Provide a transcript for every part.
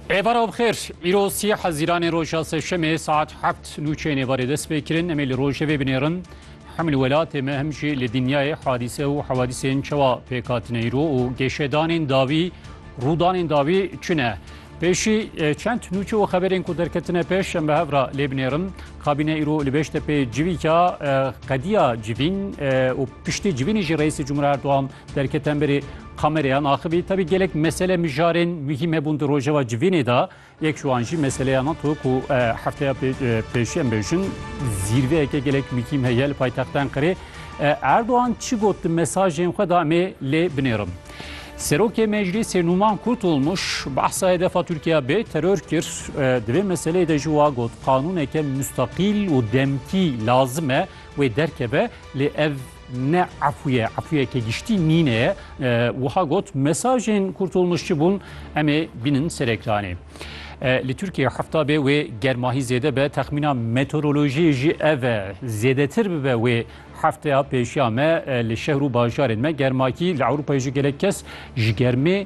Êvara bi xêr, îro sî hezîranê roja sêşemê saet heft nûçeyê nêvarê dest pê kirin em ê li rojevê binêrin. Hem li welatê me hem jî li dinyayê hadîse û hewadîsên çawa pêk hatine îro û gêşedanên dawî rûdanên dawî çi ne. Pêşî çend nûçe û xeberên ku derketine pêş em bi hev re lê binêrin. Kabîne îro li Beştepê civîka qediya civîn û piştî civînê jî Reîsê Cumhuriyet Erdogan Derke tenberî kamereyan axivî tevî gelek mesele mijarên muhîm hebûn di rojeva civînê de yek ji wan jî meseleya nan tu ku hefteya pêşiye em bêjin zîrveyeke gelek muhîm heye li paytexta Enqerê Erdogan çi got di mesajên xwe da emê lê binêrim. Serokê Meclîsê Numan Kurtulmuş behsa hedefa Tirkiya bê teror kir di vê meseleyê de jî wa got qanûneke mustaqîl û demkî lazim e wê derkeve lê ev Ne efû ye, efûyeke giştî nîne ye. Wiha got, mesajên Kurtulmuş çi bûn? Em ê bînin ser ekranê. Li Tirkiyeyê hefta be wê germahî zêde be, texmîna meteorolojiyê jî ev e. Zêdetir bibe wê hefteya pêşiya me li şehir û bajarên me germakî li Ewropayê jî gelek kes ji germê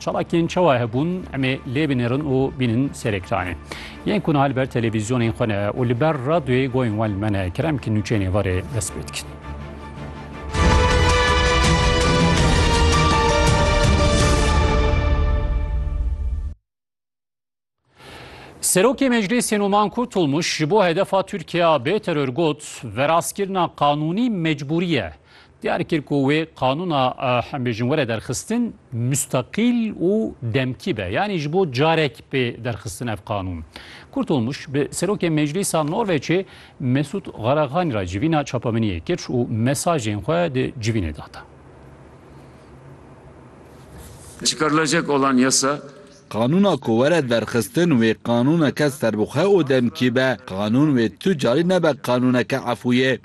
Çalakên çawa hebûn emê lê binêrin û bînin serekranê. Yên ku niha li ber televîzyonên xwe ne û li ber radyoyê goyên wan li me ne kerem ki nûçeyên êvarê dest pê dikin. Serokê Meclîsê Numan Kurtulmuş ji bo hedefa Tirkiya bê teror got, veraskirina qanûnî mecbûrî ye. Diyar kir ku wê qanûna em bêjin were derxistin mustaqîl û demkî be. Yanî ji bo carek bê derxistin ev qanûn. Kurtulmuş bi Serokê Meclîsa Norveçê Mesûd Xaraxanî re civîna çapemeniyê kir û mesajên xwe di civînê de da. Çıkarılacak olan yasa Qanûna ku were derxistin wê qanûneke serbixwe û demkî be. Qanûn wê tu carî nebe qanûneke efûyê.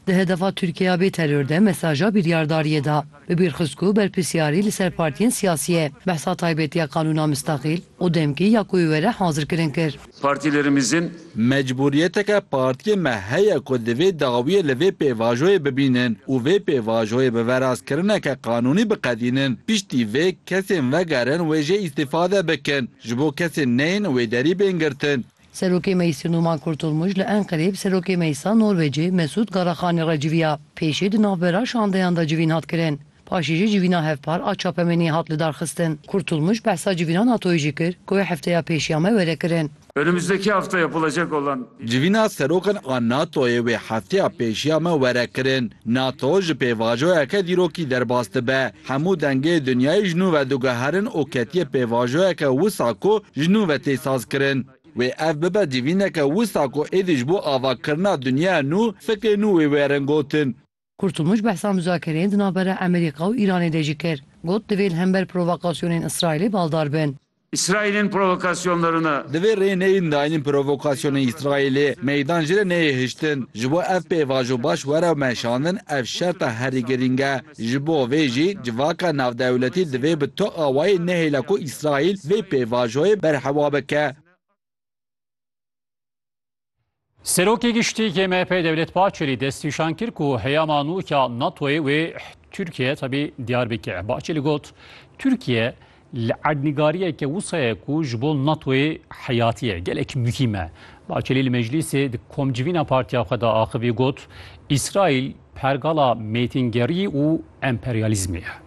Di hedefa Tirkiyeya bê teror de mesaja biryardariyê da. Bi bîr xist ku berpirsyarî li ser partiyên siyasî ye. Behsa taybetiya qanûna mistaqîl û demkî ya ku wê were hazirkirin kir. Partilerimizin. Mecbûriyeteke partiyê me heye ku divê dawiyê li vê pêvajoyê bibînin û vê pêvajoyê bi verazkirineke qanûnî biqedînin. Piştî vê kesên vegerin wê jê îstîfade bikin. Ji bo kesên neyên wê derî bên girtin. Serokê Meclîsê Numan Kurtulmuş li Enqereyê bi Serokê Meclîsa Norwecê Mesûd Garraxanî re civiya. Pêşê di navbera şandeyan de civîn hat kirin. Paşê jî civîna hevpar a çapemeniyê hat lidarxistin. Kurtulmuş behsa civîna NATO'yê jî kir ku wê hefteya pêşî ya me were kirin. Önümüzdeki hafta yapılacak olan. Civîna serokan a NATO'yê wê hefteya pêşî ya me were kirin. NATO ji pêvajoyeke dîrokî derbas dibe. Hemû dengê dinyayê ji nû ve diguherin û ketiye pêvajoyeke wisa ku ji nû ve tê sazkirin. Wê ev bibe civîneke wisa ku êdî ji bo avakirina dinyaya nû fikê nû wê werin gotin. Kurtulmuş behsa muzakireyên di navbera Emerîka û Îranê de jî kir. Got divê li hember provokasyonên Îsraîlê baldar bin. Îsraîlên provokasyonlerine. Divê rê neyên daînin provokasyonên Îsraîlê, meydan jî re neyê hiştin. Ji bo ev pêvajo baş were meşandin ev şerta herî girîng e. Ji bo vê jî civaka navdewletî divê bi tu awayê nehêle ku Îsraîl vê pêvajoyê berhewa bike. Serokê Giştî yê MHP'ê Dewlet Bahçelî destnîşan kir ku heyama nû ya NATO'yê wê Tirkiye tabi diyar bike. Bahçelî got, Tirkiye li erdnîgariyeke wisa ye ku ji bo NATO'yê heyatî ye, gelek muhîm e. Bahçelî li meclîsê di komcivîna partiya xwe de axivî got, Îsraîl pergala mêtingerî û emperyalîzmê ye.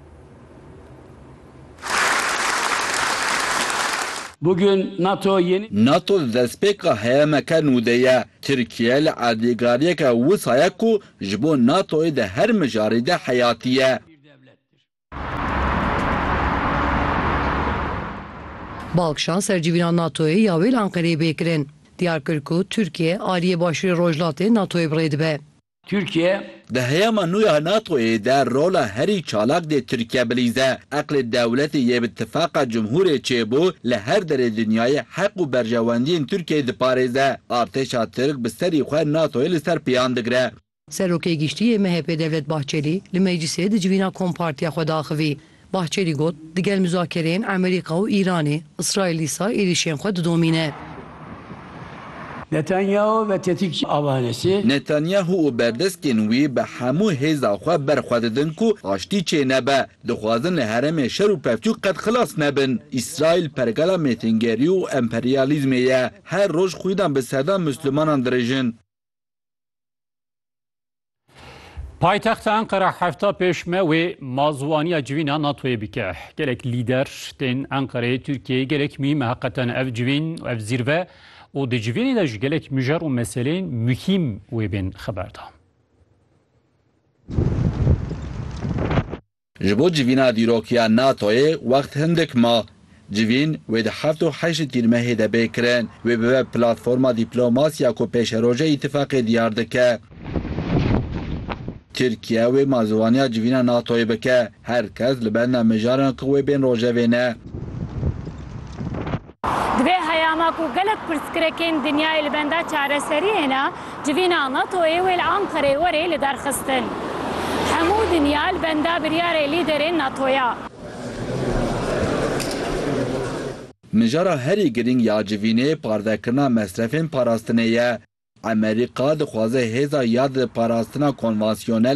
Nato di destpêka heyemeke nû de ye. Tirkiye li erdêgariyeke wisa ye ku ji bo NATO'yê di her mijarê de heyatî ye. Balkişan ser civîna NATO'yê ya wê li Enqereyê bê kirin, diyar kir ku Tirkiye aliyê Başûrê Rojhilatê NATO'yê bi rê dibe. Tirkiye. Di heyama nû ya NATO'yê de rola herî çalak dê Tirkiye bilîze. Eqlê dewletê yê bi tifaqa cumhûrê çêbû li her derê dinyayê heq û berjewendiyên Tirkiyeyê diparêze. Artêşa Tirk bi serî xwe NATO'yê li ser pêyan digire. Serokê Giştî yê MHP'ê Devlet Bahçelî li meclîsê di civîna Kompartiya xwe de axivî. Bahçelî got, Di gel muzakereyên Amerîka û Îranê, Îsraîl dîsa êrîşên xwe didomîne. Netanyahu ve tetikçi avanesi. Netanyahu û berdeskên wî bi hemû hêza xwe ber xwe didin ku aştî çênebe. Dixwazin li herêmê şer û pevçûk qet xilas nebin. Îsraîl pergala mêtingerî û emperyalîzmê ye. Her roj xwînan bi sedan Muslimanan dirêjin. Paytexta Enqera hefta pêşme wê mazwaniya civîna NATOyê bike. Gelek lîder tên Enqereyê Tirkiyeyê gelek mîme heqeten ev civîn û ev zîrve û di civînê de ji gelek mijer û meseleyên muhîm wê bên xeberdan. Ji bo civîna dîrokiya NATO'yê wext hindik ma. Civîn wê di heft û heşt Tîrmehê de bê kirin. Wê bibe platforma dîplomasiya ku pêşeroja îtîfaqê diyar dike. Tirkiye wê ma ziwaniya civîna NATO'yê bike. Her kes li benda mijaran ku wê bên rojevê ne. Divê heyama ku gelek pirsgrekên dinyayê li benda çareseriyê ne, civîna NATO'yê wê li Anqereyê were lidarxistin. Hemû dinya li benda biryarê lîderên NATO'ya. Mijara herî girîng ya civînê parvekirina mesrefên parastinê ye. Emerîka dixwaze hêza ya di parastina konvansiyonel,